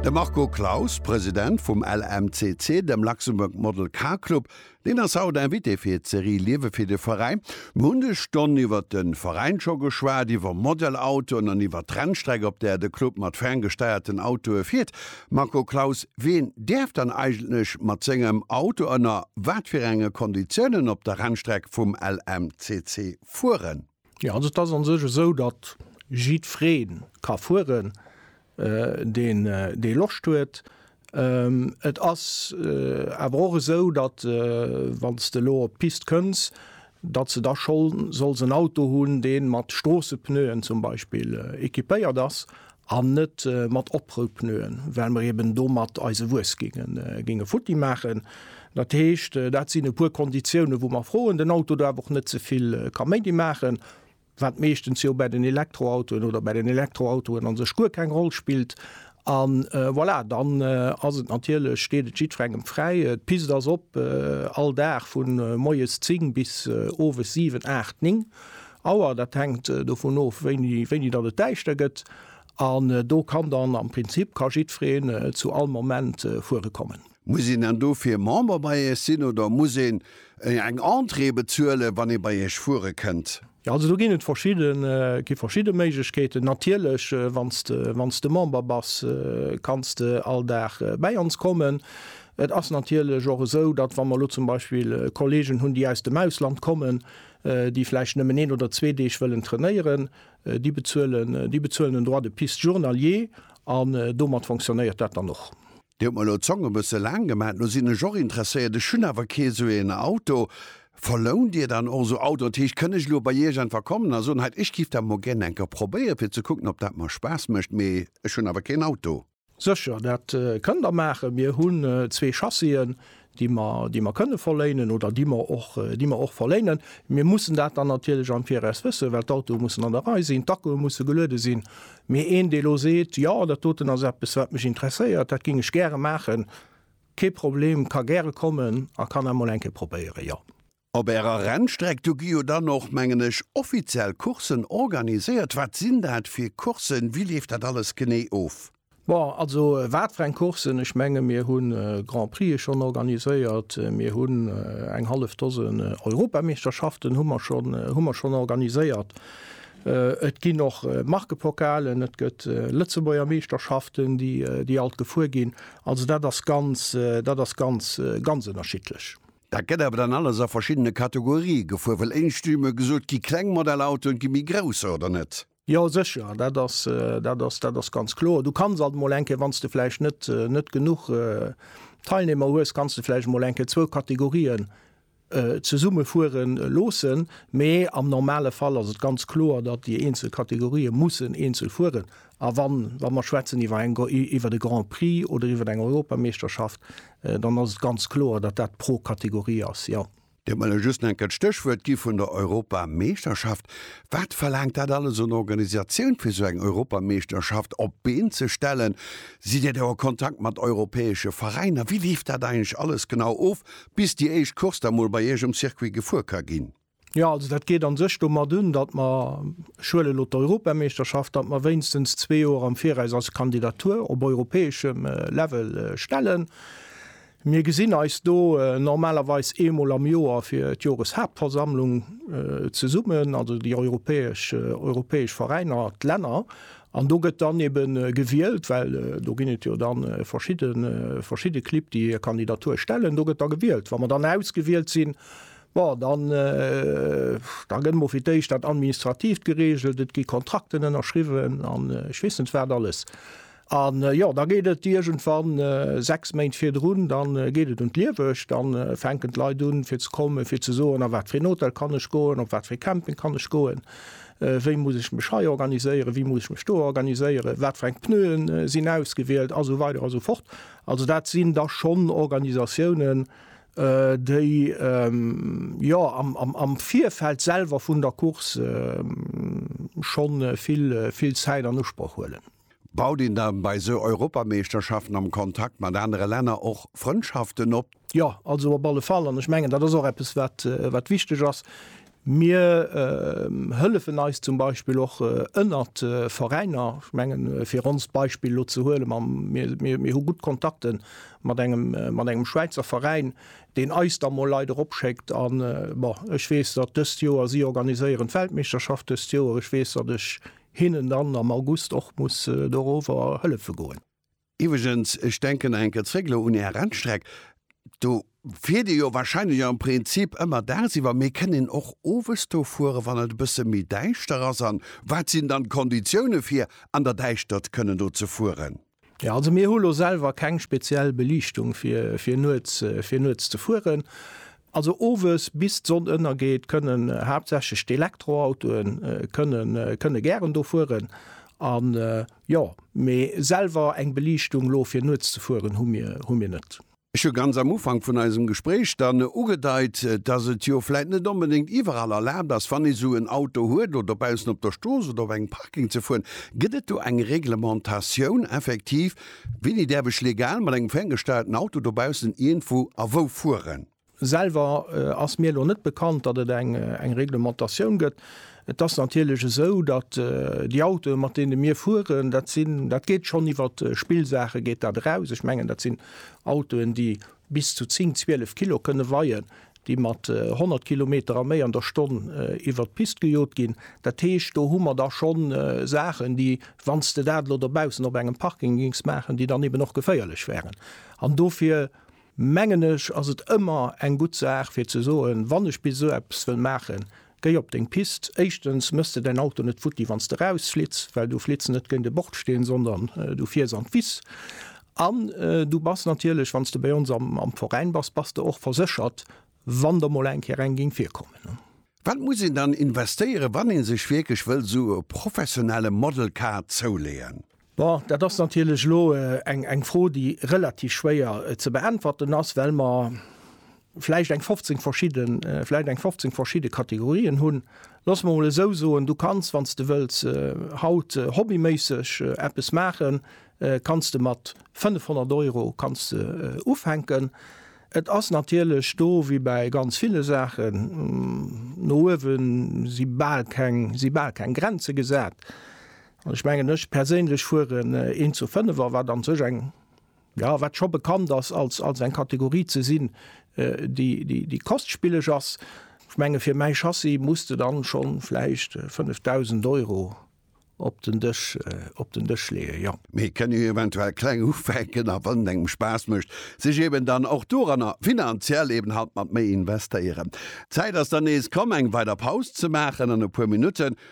De Marco Claus, President vum LMCC, dem Luxembourg Model Car Club, deen ass haut Invité fir d'Serie Liewe fir de Veräin. Mir hunn des Stonn iwwert de Veräin scho geschwat, iwwer Model-Autoen an iwwer d'Rennstreck, op där de Club mat ferngesteierten Autoe fiert. Marco Claus, wien däerf dann eigentlech mat sengem Auto ënner wat fir enge Konditiounen op der Rennstreck vum LMCC fueren? Jo, also et ass a sech esou, datt jiddweree ka fueren, deen dee Loscht huet. Et ass awer och esou, datt, wann s de elo op d'Pist kënns, datt s de da scho solls en Auto hunn, dee mat Stroossepneuen zum Beispill equipéiert ass. an net mat Oprou-Pneuen, well mer eben domat eise Wues géinge futti maachen. Dat heescht, dat sinn e puer Konditiounen, wou mer froen, den Auto daf och net ze vill Kaméidi maachen, wat meeschtens jo bäi den Elektroautoen oder bäi den Elektroautoen a sech guer keng Roll spillt. A voilà, dann ass et natierlech, steet et jiddferengem fräi. D'Pist ass op all Dag vu moies 10 bis owes 7, 8, 9, Auer, dat hänkt dovun of, wéini datt et däischter gëtt. An do kann dann, am Prinzip ka jiddfereen zu all Moment fuere kommen. Muss een dann dofir Member bei Iech sinn oder muss een eng Entrée bezuelen, wann ee bei Iech fuere kënnt? Jo, also do ginn et verschidden, gi verschidde Méiglechkeeten. Natierlech, wann s de, wann s de Member bass, kanns de all Dag bäi ons kommen. Et ass natierlech och esou, datt, wa mer elo zum Beispill Kolleegen hunn, déi aus dem Ausland kommen, déi vläicht nëmmen een oder zwee Deeg wëllen trainéieren, déi bezuelen, déi bezuelen en Droit de piste journalier an domat fonctionnéiert dat dann och. Dir hutt mer lo d'Zong e bësse laang gemat. Lo sinn ech och interesséiert, ech hunn awer kee sou een Auto. Verlount Dir dann och esou Autoen? Dat heescht, kënn ech elo bei Iech einfach kommen a soen, hei, ech giff dat mol gären eng Kéier probéieren, fir ze kucken, ob dat mer Spaass mécht, mee ech hunn awer keen Auto? Sécher, dat kënnt Der maachen. Mir hunn zwee Chassien, déi mer, déi mer kënne verléinen oder déi mer och, déi mer och verléinen. Mir mussen dat dann natierlech am Viraus wëssen, well d'Autoe mussen an der Rei sinn, d'Akkue musse geluede sinn. Mee een, dee elo seet, Jo, dat doten ass eppes, wat mech interesséiert, dat géing ech gäre maachen, kee Problem, ka gäre kommen a kann emol eng Kéier probéieren, jo. Op Ärer Rennstreck, do gi jo dann och, mengen ech, offiziell Courssen organiséiert. Wat sinn dat fir Courssen? Wéi leeft dat alles genee of? Bon, also wat fir eng Courssen? Ech menge mir hu Grand-Prixë schonn organiséiert, mir hunn eng hallef Dosen Europameeschterschaften hu mer schonn, hu mer schonn organiséiert. Et ginn och Markepokalen, et gëtt Lëtzebuerger Meeschterschaften, déi alt gefuer ginn. Also dat ass ganz, dat ass ganz, ganz ënnerschiddlech. Dat gëtt awer dann alles a verschiddene Kategorie gefuer, well éischt hu mir gesot, gi kleng Modellautoen, gi méi grousser, oder net? Jo, sécher, dat ass, dat ass, dat ass ganz kloer. Du kanns alt emol eng Kéier, wann s de vläicht net, net genuch Teilnehmer hues, kanns de vläicht emol eng Kéier zwou Kategorien zesumme fuere loossen, mee am normale Fall ass et ganz kloer, datt déi eenzel Kategorië mussen eenzel fueren. A wa mer schwätzen iwwer e Grand Prix oder iwwer eng Europameeschterschaft, dann ass et ganz kloer, datt dat pro Kategorie ass, jo. Dir hutt mer elo just enke d'Stéchwuert gi vun der Europameeschterschaft. Wat verlaangt dat alles un Organisatioun, fir esou eng Europameeschterschaft op d'Been ze stellen? Sidd Dir do a Kontakt mat europäesche Veräiner? Wéi leeft dat eigentlech alles genau of, bis déi éischt Course da mol bei Iech um Circuit gefuer ka ginn? Jo, also dat geet a sech domat un, datt mer, ech huelen elo d'Europameeschterschaft, datt mer wéinstens zwee Joer am Viraus eis Kandidatur op europäeschem Level stellen. Mir gesinn eis do normalerweis eemol am Joer fir d'Joreshaaptversammlung zesummen, also déi europäesch europäesch Veräiner, d'Länner. An do gëtt dann ebe gewielt, well do ginn et jo da verschidde verschidde Clibb, déi hir Kandidatur stellen, do gëtt da gewielt. Wa mer dann ausgewielt sinn, Bon, dann, da gëtt emol fir d'éischt dat Administratiivt geregelt, et gi Kontrakten ënnerschriwwen an ech weess net wat alles. An, jo, da geet et iergendwann, sechs Méint virdrun, da geet et un d'Liewegt, da fänken d'Leit un, fir ze kommen, fir ze soen, a wat fir een Hotel kann ech goen, op wat fir ee Camping kann ech goen, wéi muss ech mech hei organiséieren, wéi muss ech mech do organiséieren, wat fir eng Pneuen sinn ausgewielt a sou weider a sou fort. Also dat sinn da schonn Organisatiounen, déi jo am Virfeld selwer vun der Course schonn vill Zäit an Usproch huelen. Baut een da bei esou Europameeschterschaften am Kontakt mat anere Länner och Frëndschaften op? Jo, also op alle Fall. An ech mengen, dat ass och eppes, wat wichteg ass. Mir hëllefen eis zum Beispill och ënnert Veräiner. Ech mengen, fir onst Beispill elo ze huelen, mam, mir, mir, mir hu gutt Kontakte mat engem, mat engem Schwäizer Veräin, deen eis da mol Leit eropschéckt. A bon, ech weess, datt dëst Joer, si organiséieren d'Weltmeeschterschaft dëst Joer, ech weess, datt ech hinnen dann am August och muss dorower hëllefe goen. Iwweregens, ech denken nach eng Kéier zréck elo un Är Rennstreck, do fiert Dir jo wahrscheinlech am Prinzip ëmmer dagsiwwer, mee kënnt een och owes do fueren, wann et e bësse méi däischter ass? A wat sinn dann d'Konditioune fir an der Däischtert kënnen do ze fueren? Jo, also mir hu lo selwer keng speziell Beliichtung fir, fir nuets, fir nuets ze fueren. Also owes bis d'Sonn ënnergeet kënnen haaptsächlech d'Elektroautoe kënnen, kënne gären do fueren. Jo, mee selwer eng Beliichtung lo fir nuets ze fueren hu mir hu mir net. Ech hu ganz am Ufank vun eisem Gespréich dann ugedeit, dass et jo vläit net onbedéngt iwwerall erlaabt ass, wann ee sou en Auto huet oder dobaussen op der Strooss oder op engem Parking ze fueren. Gëtt et do eng Reglementatioun effektiv, wéini däerf ech legal mat engem ferngesteierten Auto dobaussen iergendwou a wou fueren? Selwer ass mir elo net bekannt, datt et eng Reglementatioun gëtt. Et ass natierlech esou, datt déi Autoe mat deene mir fueren, dat sinn, dat geet schonn iwwer Spillsaache geet dat eraus. Ech mengen dat sinn Autoen, déi bis zu 10, 12 Kilo kënne weien, déi mat 100 Kilometer a méi an der Stonn iwwer d'Pist gejot ginn. Dat heescht, do hu mer da scho Saachen, déi, wann s de dat elo dobaussen op engem Parking géings maachen, déi dann eben och geféierlech wären. An dofir. mengen ech, ass et ëmmer eng gutt Saach fir ze soen, wann ech bis esou eppes wëll maachen, géi op deng Pist, éischtens méchs de däin Auto net futti wann s de rausflitts, well du flitts net géint e Bordsteen, sondern du fiers an d'Wiss an. Du bass natierlech, wann s de bei ons am Veräin bass, bass de och verséchert, wann der mol eng Kéier eng géing virkommen. Wat muss een dann investéieren, wann ee sech wierklech wëll esou e professionelle Model Car zouleeën? Bon, dat ass natierlech elo eng Fro, déi relativ schwéier ze beäntwerten ass, well mer vläicht eng 15 verschidde, vläicht eng 15 verschidde Kategorien hunn. Loosse mer emol esou soen, Du kanns, wann s de wëlls, haut hobbyméisseg eppes maachen, kanns de mat 500 Euro kanns de ufänken. Et ass natierlech do wéi bäi ganz ville Saachen, no uewe si bal keng, si bal keng Grenze gesat. An ech mengen, ech perséinlech fueren een zu Fënnefer, wat an sech eng, jo, wat scho bekannt ass als, als eng Kategorie ze sinn, déi, déi, déi kostspilleg ass. Ech menge fir mäi Chassis muss de dann scho vläicht 5.000 Euro op den Dësch, op den Dësch leeën, jo. Mee et kënne jo eventuell kleng ufänken a wann et engem Spaass mécht, sech eben dann och doranner finanziell eben halt mat méi investéieren. D'Zäit ass dann nees komm eng weider Paus ze maachen an e puer Minutten